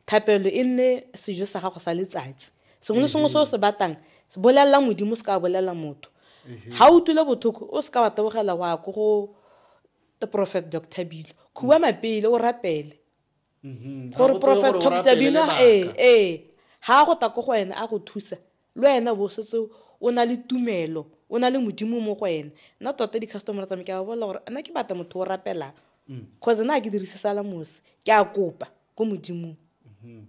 thapelo e nne sejo sa gago sa letsatsi sengwe le sengwe se o se batang bolelela modimo se ka bolelela motho ga o utlwile botlhoko o se ka wa tabogela wa ko go prophet dr bilo khuba mapele o rapele gore prophet dr bilo ee ee ga a go ta ko go wena a go thusa Le wena bo setse o na le tumelo o na le modimo mo go ena nna tota di-customer tsa me ke a ba bolela gore nna ke batla motho o rapelang cause nna a ke dirise sala mose ke a kopa ko modimong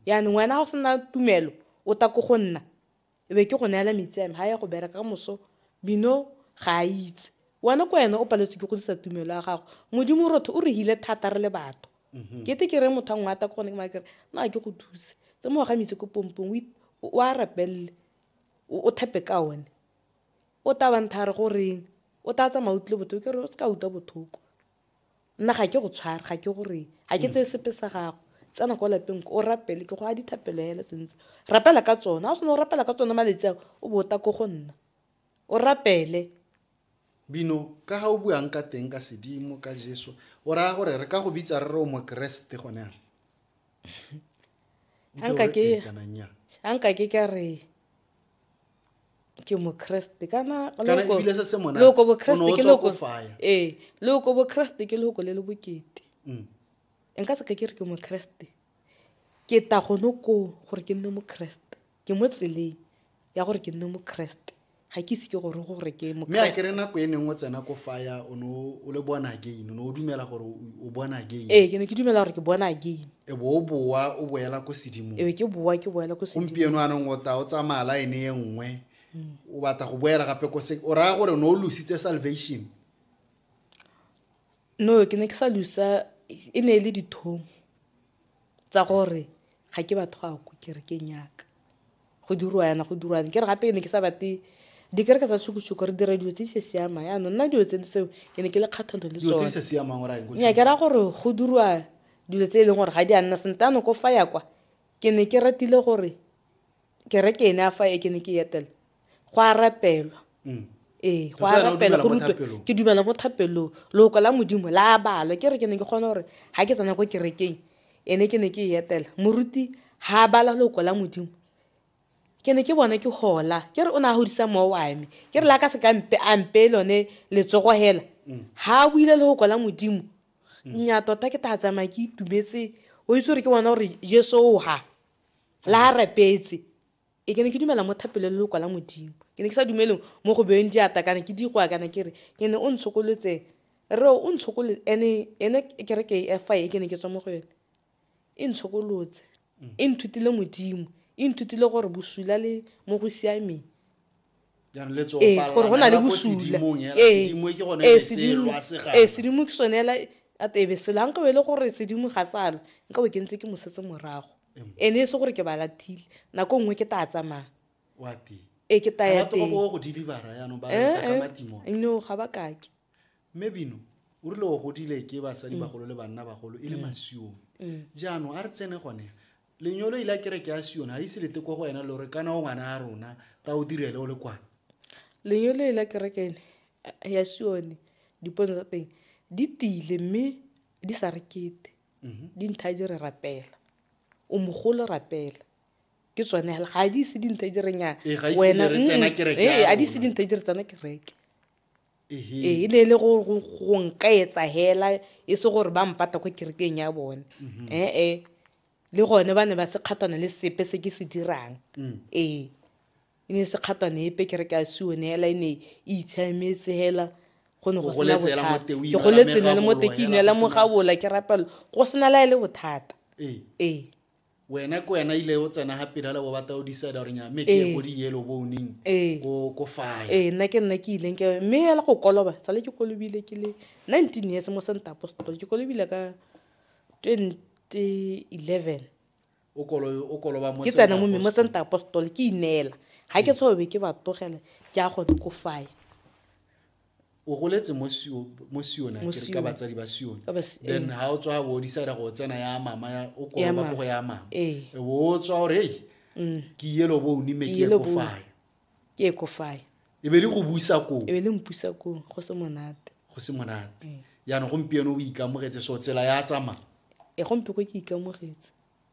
yaanong wena ga o sena tumelo o ta ko go nna e be ke go neela metsi ame ga ya go bereka ka moso bino ga a itse wena ko wena o paletswe ke godisa tumelo ya gago modimo rotho o re hile thata re le batho mm-hmm. kete ke re motho a ngwata ko gone ke makere na ke go thuse tse mo ga mitse ko pompong o a rapelele o thepe ka one o tabantha re go reng o tla tsamaya utlwe botlhoko ke re o se ka utlwa botlhoko nna ga ke go tshware ga ke go reng ga ke tseye sepe sa gago tsena kwa lapeng o rapele ke go a dithapelo hela tsentse rapela ka tsone ga o sena o rapela ka tsone maletsi ao o bota ko go nna o rapele Bino, ka ga o buang ka teng ka sedimo ka Jesu, o raya gore re ka go bitsa re re o mokeresete gone yana? Nke o Anka re ke- ee kana nnyaa. a nka ke ka re ke mokreste kana Kana loko- ebile se se monate, loko o ne bokreste o ke tswa loko ko faya. ee loko bokreste ke loko le le bokete Mm. nka se ka ke re ke mokreste ke ta gone koo gore ke nne mokreste Ke mo tseleng ya gore ke nne mokeresete ga ke ise ke gore gore ke mme a kere nako e neng o tsena ko faya o ne o le born again o ne o dumela gore o born again ee ke ne ke dumela gore ke born again e bo o boa o boela ko sedimong ebe ke boa ke boela ko sedimong gompieno anong o ta o tsamaya line e nngwe mm. o batla go boela gape ko se o raya gore o ne o lositse salvation no ke ne ke sa losa e ne e le dithong tsa gore ga ke batho ga ko kerekeng yaka go dirwa yana go dirwa ke re gape ke ne ke sa bate dikereke tsa tshukutshuku re dira dilo tse di se siamang yaanong nna dilo tse tseo ke ne ke le kgatlhanong le dilo tse di sa siamang o raya nya ke ra gore go dirwa dilo tse e leng gore ga di a nna sentano ko fa ya kwa ke ne ke ratile gore kereke ene a fa e ke ne ke etela go a rapelwa mm. ee go a rapela go rutwe ke dumela mo thapelong loko la modimo la a balwa ke re ke ne ke kgona gore ga ke tsena ko kerekeng ene ke ne ke e etela moruti ga a bala loko la modimo ke ne ke bone ke gola ke re o ne a godisa moo wa me ke re la ka se ka mpe a mpe lone letsogo hela ga a buile le go kola modimo nya tota ke tla tsamaya ke itumetse o itse gore ke bona gore jesu o ga la a rapetse e ke ne ke dumela mo thapelo le lokwa la modimo ke ne ke sa dumele mo go beeng diata kana ke digoa kana ke re ke ne o ntshokolotse re o ntshokolotse ene ene ke re ke e fa e ke ne ke tswa mo go yone e ntshokolotse e nthutile modimo e nthutile gore bosula le mo go siameng ee gore go na le bosula ee, ee, ee sedimo ke sone ela atebe selo a nkabe e le gore sedimo ga salo nkabe ke ntse ke mosetse morago ene e se gore ke ba lathile nako nngwe ke tla tsamaya e ke taya teng no ga ba kake mme bino o rile o godile ke basadi mm. bagolo le banna bagolo e le mm. masiong mm. jaanong a re tsene gone lenyolo ile a kereke ya sione ga ise lete kwa go wena lore kana o ngwana a rona ta o direle o le kwana lenyolo ile a kereke ene eh, ya sione dipono tsa teng di tile mme di sa re kete mhm. di ntha di re rapela o mogolo rapela ke tsone ga a di ise dintha di re nya wena a di ise dintha di re tsena kereke ee e ne e le go nka etsa hela e se gore ba mpata ko kerekeng ya bone mhm. ee le gone ba ne ba se kgatwana le sepe se ke se dirang mm. ee e ne se kgatwana epe kereke a sione hela e ne e itshametse hela go ne go sena bothata ke go letsena le mo teke inela mo gabola ke rapelo go sena la e le bothata ee wena ke wena ile o tsena ga pirala bo bata o decide gore nya mme ke ye ko di-yellow boning ko fae ee nna ke nna ke ileng ke mme ela go koloba sale ke kolobile ke le nineteen years mo santa apostol ke kolobile ka twenty eleven ke tsena mo mme mo santa apostol ke ineela ga ke tshobe ke ba togele ke a gone ko fae o goletse mo sione ke re ka batsadi ba sione then ha o tswa bo o decide go tsena ya mama ya o koa ba go ya mama e bo o tswa gore ei mm. ke yelo bo o nime ke ko fae ke ko fae e be le go busa ko e be le mpusa ko go se monate go se monate mm. yana gompieno o ikamogetse so tsela ya tsamaya e gompe ko ke ikamogetse